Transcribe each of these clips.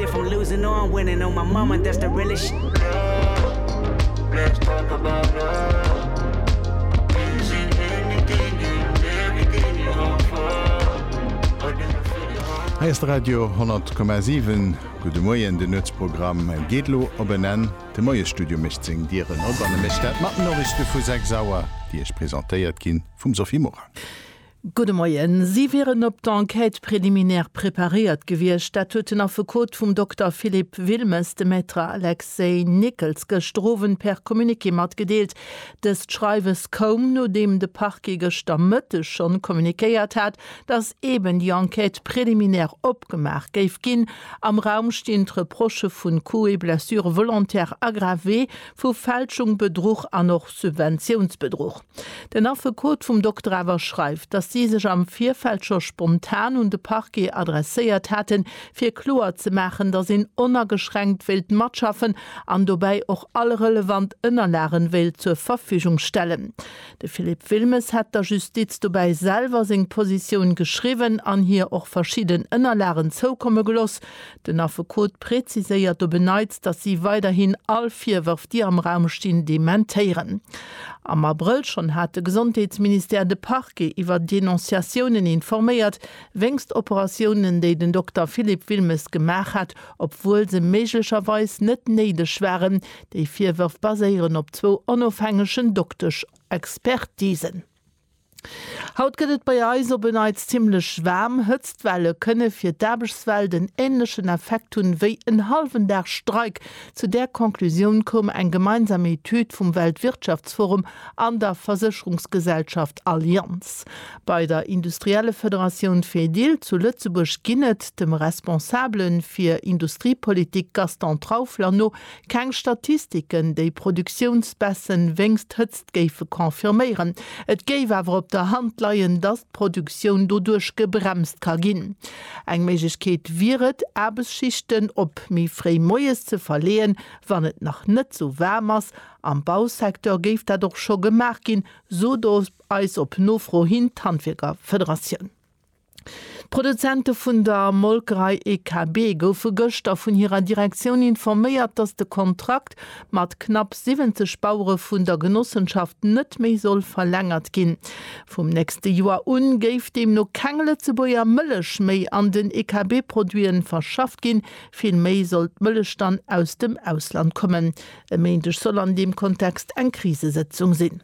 If I'm losing or I'm winning oh my mama that's the realest sh Girl, let's talk about love Is it anything and everything you hope for? Or do you feel it hard? Hei ass de Radio 10,7. Gudde Moien, de Nuetsprogramm geet elo op en Enn. De Moiesstudio mécht seng Dieren op an e mécht dat mat Noriichte vu 6 Auer, déi Iech presentéiert gi vum Sophie Morang. Gudde Moien. Si wieren op d'Enquête préliminaire preparéiert gewiescht. Dat huet den Affekot vum Dokter Philippe Wilmes dem Maître Alexei Nickels gëschter Owend per Communiqué matgedeelt. Dëst Schreiwes koum, nodeem de Parquet gëschter Mëtteg schonn kommuniquéiert hat, datt eeben déi Enquête préliminaire opgemaach géif ginn. Am Raum stinn d'Reprochë vu Coups et blessures volontaires aggravés, vu Fälschung, Bedruch an och Subventiounsbedruch. Den Affekot vum Dokter awer schreift, datt si sech am Virfeld scho spontan un de Parquet adresséiert haten, fir kloer ze maachen, datt een onageschränkt wéilt matschaffen an dobäi och all relevant Ënnerlagen wéilt zur Verfügung stellen. De Philippe Wilmes hätt der Justiz dobäi selwer seng Positioun geschriwwen an hir och verschidden Ënnerlagen zoukomme geloss, Den Affekot präziséiert op en Neits, datt si weiderhin all Virwërf, déi am Raum stinn, dementéieren. Am Abrëll schonn hat de Gesondheetsministère de Parquet iwwer Denonciatiounen informéiert, wéinst Operatiounen, déi den Dokter Philippe Wilmes gemaach hat, obwuel se méiglecherweis net néideg waren. Déi Virwërf baséieren op zwou onofhängegen Doktesch-Expertisen. Haut gëtt et bei eis op e Neits zimmlech waarm. Hëtztwelle kënne fir d'Aarbechtswelt en änlechen Effekt hunn, wéi en hallwen Dag Streik. Zu där Conclusioun koum eng gemeinsam Etüd vum Weltwirtschaftsforum an der Versécherungsgesellschaft Allianz. Bei der Industriellefederatioun Fedil zu Lëtzebuerg ginn et, dem Responsabele fir Industriepolitik Gaston Traufler no, keng Statistiken, déi Produktiounsbaissen wéinst Hëtztwelle géife confirméieren. Et géif awer op der Hand leien, datt d'Produktioun doduerch gebremst ka ginn. Eng Méiglechkeet wier et, Aarbechtsschichten op méi fréi moies ze verleeën, wann et nach net sou waarm ass. Am Bausecteur géif dat och scho gemaach ginn, sot eis op Nofro hin d'Handwierkerfederatioun. D'Produzente vun der Molkerei EKB goufe gëschter vun hirer Direktioun informéiert, datt de Kontrakt mat knapp 70 Bauere vun der Genossenschaft net méi soll verlängert ginn. Vum nächste Joer u géif deemno keng Lëtzebuerger Mëllech méi an den EKB-Produite verschafft ginn, vill méi soll d'Mëllech dann aus dem Ausland kommen. E Méindeg soll an deem Kontext eng Krisesëtzung sinn.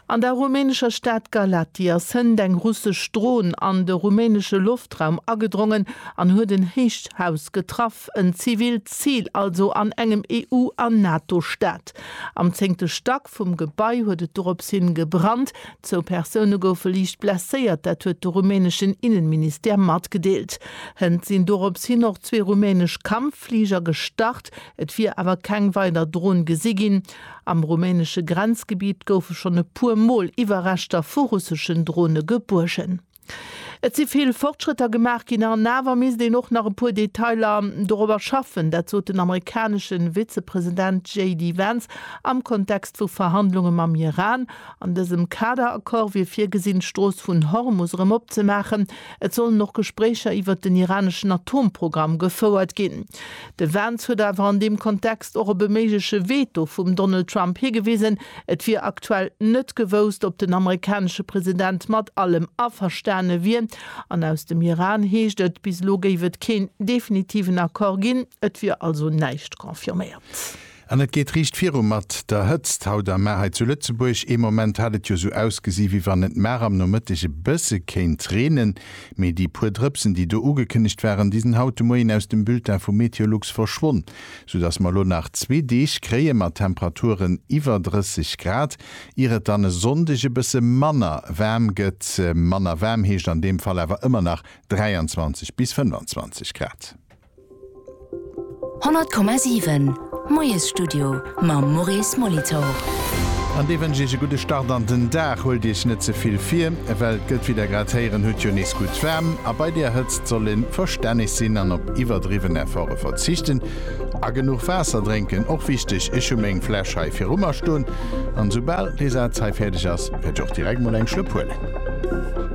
An der rumänescher Stad Galati ass hënt eng russesch Dron an de rumänesche Loftraum agedrongen an huet en héicht Haus getraff, en zivilt Zil also an engem EU an NATO-Staat. Am zéngte Stack vum Gebai huet et dorops hin gebrannt. Zwou Persoune goufe liicht blesséiert, dat huet de rumäneschen Innenministère matgedeelt. Hënt sinn dorops hin och zwee rumänesch Kampffliger gestart, et wier awer keng weider Dron gesi ginn. Am rumänesche Grenzgebitt goufe schonn e puer Mol Iwwerreschter vu russeschen Drone gebuergen. Et si vill Fortschrëtter gemaach ginn an awer misst een och nach e puer Detailer dorobber schaffen. Dat sot den amerikanesche Vizepresident JD Vance am Kontext vu Verhandlunge mam Iran. An dësem Kader-Accord wier virgesinn, d'Strooss vun Hormus erëm opzemaachen. Et sollen och Gespréicher iwwert den iraneschen Atomprogramm gefouert ginn. De Vance huet awer an deem Kontext och op e méigleche Veto vum Donald Trump higewisen. Et wier aktuell net gewousst, ob den amerikanesche President mat allem averstane wier. An aus dem Iran heescht et, bis elo géif et keen definitiven Accord ginn. Et wier also näischt confirméiert. An et geet riicht viru mat der Hëtzt haut am Mar hei zu Lëtzebuerg. Ee Moment hat et jo sou ausgesi wéi wann et mar am Nomëtteg e bësse kéint reenen, mee déi puer Drëpsen, déi do ugekënnegt waren, déi sinn haut de Moien aus dem Bulletin vu Meteolux verschwonn, sou dass mer elo nach zwee Deeg kréie mat Temperaturen iwwer 30 Grad, ier et dann e Sonndeg e bësse manner waarm gëtt. Manner waarm heescht an deem Fall awer ëmmer nach 23 bis 25 Grad. 100,7 Moiesstudio mam Maurice Molitor. An dee wënscht iech e gudde Start an den Dag. Huelt iech net ze vill vir, well et gëtt, wéi der grad héieren hutt, jo nees gutt waarm. A bei der Hëtzt soll ee verstänneg sinn an op iwwerdriwwen Efforte verzichten. A genuch Waasser drénken, och wichteg. Ech hu meng Fläsch hei viru mer stoen an esoubal dee Saz hei fäerdeg ass, wäert ech och direkt mol eng Schlëpp huelen.